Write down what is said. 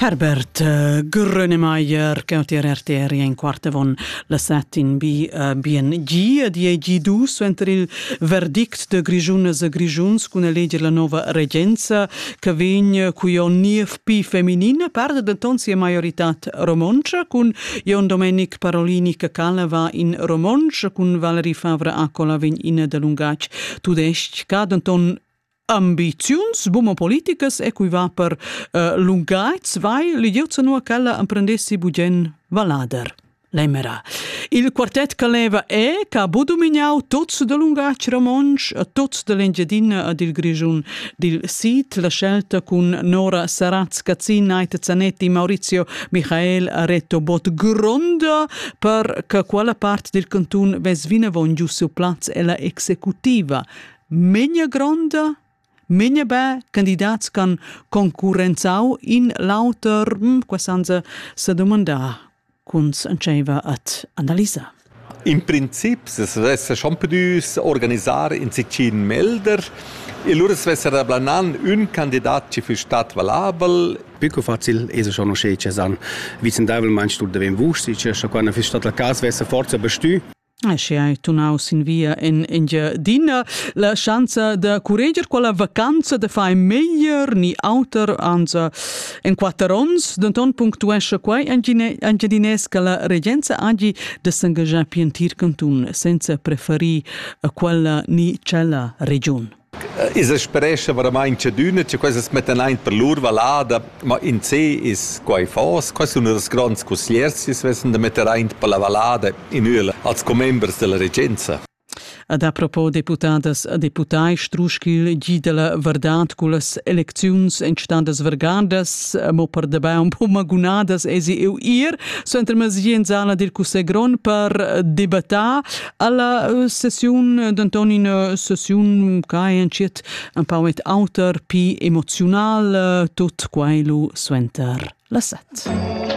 Herbert äh, Grönemeyer cautier RTR in quarte von la set in bi äh, bien gi die G2 suenter il verdict de Grigiunas e Grigiuns cun eleger la nova regenza che vegn cu Jon Niev pi feminin perde denton sia maiorità romontscha cun Jon Domenic Parolini che cala va in romontsch cun Valerie Favre Accola vegn in de lungatg tudesc ca denton ambiziuns buma politicas e cui va per uh, lungaits vai l'idiozza nua ch'ella emprendessi bugen valader l'emera. Il quartet che leva è che ha domignau tots del lungatg romontsch, tots dell'Engiadina ed il Grischun dil Sid, la scelta cun Nora Saratz, Cazzin, Aita Zanetti, Maurizio Michael Reto Bot gronda per che quella part del cantun vesvina von giu seu plaz ella executiva Memia gronda, memia be candidats ch'han concurrenzau in l'auter, qua san se sedumandar cun entscheiver ad analisar. In princip se svessa schon pudüs organisar in sicin melder e lura svessa da planan ün candidat chi füss stat valabel. Più facil es schon usché che san vicendaivelmaing tuot davent vusch, schi cha quando füss stat la cas svessa forza bestü. Sche hai tunau sin via en Engiadina, la schanza da curreger quella vacanza da fai meglier ni auter anza en quatter ons, denton punctuescha quei Engiadinès che la regenza hagi da s'engaschar pil entir cantun senza preferir quella ni tschella regiun. Ins sperescha varamaing tschadüna cha quesas mettan aint per lur vallada, ma insè es quai fos. Quai sun ünas gronds cussiers chi's vessan da metter aint per la vallada in üel als commembers da la regenza. Ed apropo deputadas e deputai strusch ch'il Gi da la vardad cullas elecziuns èn stadas vargadas, mo per dabei un po magunadas esi eu ir suenter mezdi in sala dil Cussegl grond per debattar. Alla uh, sessiun eh, denton ina sessiun che entschiet un pau et auter pi emoziunal uh, tut quai lu suenter la set.